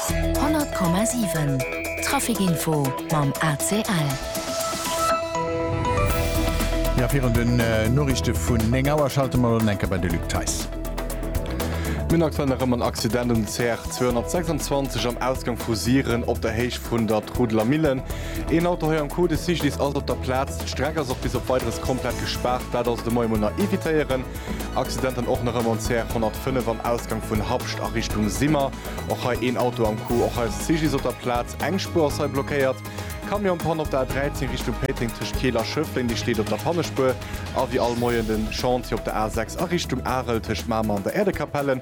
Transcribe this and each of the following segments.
100,7 Trafic Info mam ACL. Jo, virun den Noriichte vun 9 Auer schalte mer elo nach eng Kéier bei de Luc Theis. Mir hunn aktuell nach ëmmer en Accident um CR 226 am Ausgang vu Siren op der Héicht vun der Trudeler Millen. Een Auto hei am Cul de Siglis ass op der Plaz. D'Streck ass och bis op Weideres komplett gespaart. Dat also de Moie mol nach evitéieren. Accidenten och nach ëmmer um CR 105 am Ausgang vun Habscht a Richtung Simmer. Och hei een Auto am Coup. Och eis CGDIS op der Plaz. Eng Spuer ass hei blockéiert. Camionspanne op der A13 Richtung Péiteng tëscht Keel a Schëffleng. Déi steet op der Pannespuer. A wéi all Moien de Chantier op der A6 a Richtung Arel tëscht Mamer an der Äerdekapelle.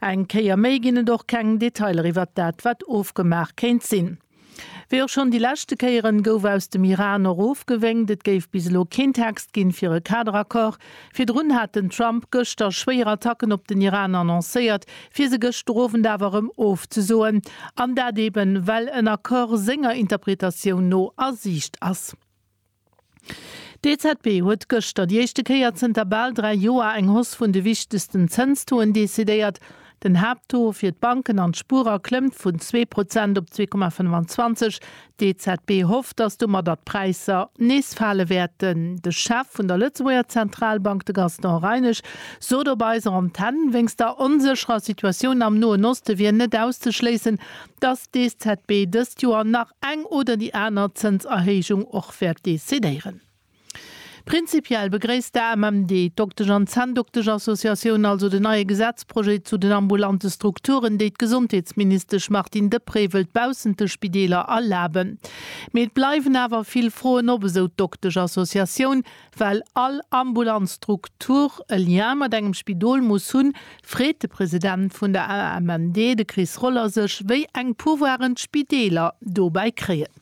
Eng Kéier méi ginn et och keng Detailer iwwert dat, wat ofgemaach kéint sinn. Wéi och schonn déi leschte Kéieren, gouf aus dem Iran och ofgewénkt, et géif bis elo keen Text ginn, fir e Kaderaccord. Virdrun hat den Trump gëschter schwéier Attacken op den Iran annoncéiert, fir se gëschter Owend awer erëm ofzesoen. An dat eeben, well en Accord senger Interpretatioun no a Siicht ass. D'EZB huet gëschter déi éischte Kéier zënter bal dräi Joer eng Hoss vun de wichtegsten Zënstoen decidéiert. Den Haapttaux fir d'Banken an d'Spuerer klëmmt vun zwee Prozent op zwee Komma 25. D'EZB hofft, datt domadder d'Präisser nees fale wäerten. De Chef vun der Lëtzebuerger Zentralbank, de Gaston Reinesch, sot op eiser Antenn, wéinst der onsécherer Situatioun am Noen Oste wier net auszeschléissen, dass d'EZB dëst Joer nach eng oder déi aner Zënserhéijung och wäert decidéieren. Prinzipiell begréisst d'AMMD, d'Doktesch an Zänndoktesch-Associatioun, also den neie Gesetzprojet zu den ambulante Strukturen, déi d'Gesondheetsministesch Martine Deprez wëllt baussent de Spideeler erlaben. Mee et bleiwen awer vill Froen op, esou d'Doktesch-Associatioun, Well all ambulant Struktur e Lien mat engem Spidol muss hunn, freet de President vun der AMMD, de Chris Roller, sech, wéi eng Pouvoiren d'Spideeler dobäi kréien.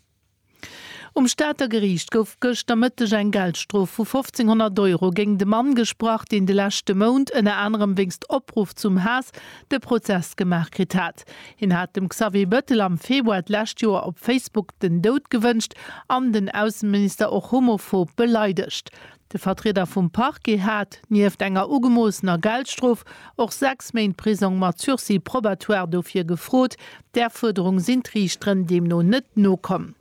Um Stater Geriicht gouf gëschter Mëtteg eng Geldstrof vu 1.500 Euro géingt e Mann gesprach, deen de leschte Mount ënner anerem wéinst Opruff zum Haass de Prozess gemaach kritt hat. Kontakt. Hien hat dem Xavier Bettel am Februar d'lescht Joer op Facebook den Doud gewënscht an den Ausseminister och homophob beleidegt. De Vertrieder vum Parquet hat, nieft enger ugemoossener Geldstrof, och sechs Méint Prisong mat Sursis probatoire dofir gefrot. Där Fuerderung sinn d'Riichteren deemno net nokomm.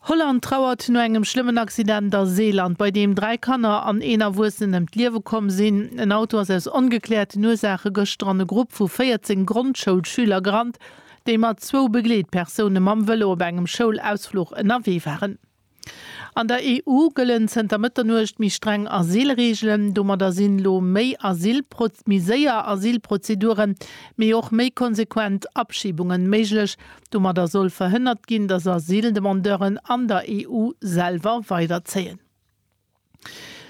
Holland trauert no engem schlëmmen Accident a Seeland, bei deem dräi Kanner an een Erwuessenen ëm d'Liewe komm sinn. En Auto ass aus ongekläerten Ursaache gëschter an e Grupp vu 14 Grondschoulschüler gerannt, déi mat zwou Begleetpersoune mam Vëlo op engem Schoulausfluch ënnerwee waren. An der EU gëllen zënter Mëtternuecht méi streng Asylreegelen. Domadder sinn elo méi Asyl, méi séier Asylprozeduren, mee och méi konsequent Abschibunge méiglech. Domadder soll verhënnert ginn, datt Asyldemandeuren an der EU selwer weiderzéien.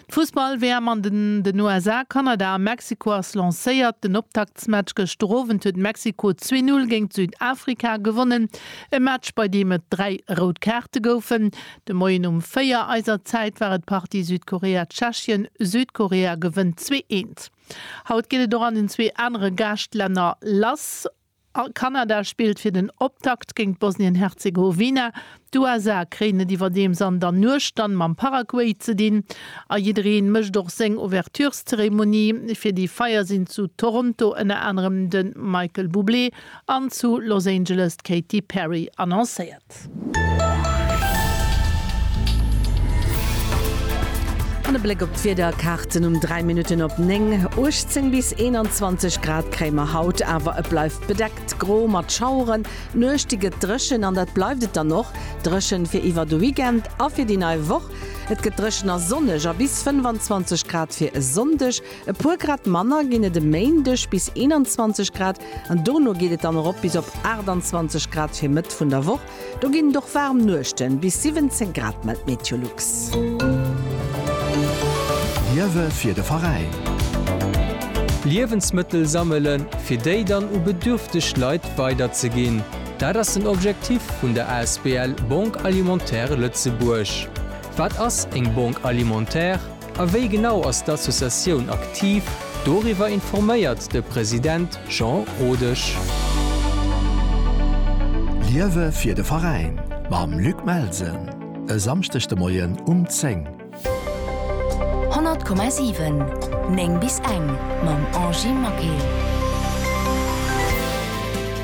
D'Fussball-WM an den USA, Kanada a Mexiko ass lancéiert. Den Optaktsmatch gëschter Owend huet Mexiko zwee Null géint Südafrika gewonnen. E Match, bei deem et dräi rout Kaarte goufen. De Moien um véier eiser Zäit war et d'Partie Südkorea-Tschechien. Südkorea gewënnt zwee eent. Haut geet et och an den zwee anere Gaascht-Länner lass. Kanada spillt fir den Optakt géint Bosnien-Herzegowina. D'USA kréien et iwwerdeems an der Nuecht dann mam Paraguay ze dinn. A jiddereen mécht och seng Ouvertureszeremonie. Fir déi Feier sinn zu Toronto ënner anerem de Michael Bublé an zu Los Angeles d'Katy Perry annoncéiert. An e Bléck op d'Wiederkaarten um 3 Minutten op 9, 18 bis 21 Grad kréie mer haut, awer et bleift bedeckt, gro mat Schaueren. D'Nuecht déi gëtt dréchen an dat bleift et dann och dréchen fir iwwer de Weekend a fir déi nei Woch. Et gëtt dréchen a sonneg a bis 25 Grad fir e Sonndeg. E puer Grad manner ginn et e Méindeg, bis 21 Grad, an dono geet et dann erop bis op 28 Grad fir Mëtt vun der Woch. Do ginn et och waarm Nuechten, bis 17 Grad, mellt Meteolux. Liewe fir de Veräin. Liewensmëttel sammelen, fir déi dann u bedürfteg Leit weiderzeginn, dat ass den Objektif vun der asbl Banque Alimentaire Lëtzebuerg. Wat ass eng Banque Alimentaire? A wéi genau ass d'Associatioun aktiv? Doriwwer informéiert de President Jean Rodesch. Liewe fir de Veräin mam Luc Melsen e Samschdeg de Moien um 10. 100,7, 9 bis eng mam Angie Maquet.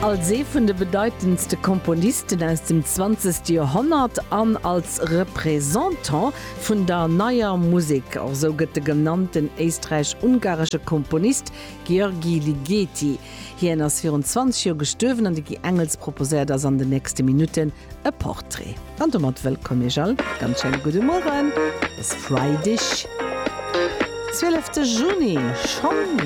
Als ee vun de bedeitendste Komponisten aus dem zwanzegste Joerhonnert an als Representant Vun der Neier Musek, och sou gëtt de genannten éisträich-ungaresche Komponist György Ligeti. Hien ass virun 20 Joer gestuerwen an de Guy Engels proposéiert eis an de nächste Minutten e Portrait. An domat wëllkomm iech all, ganz schéine gudde Mueren, e Freideg, 12 de Juni schonn.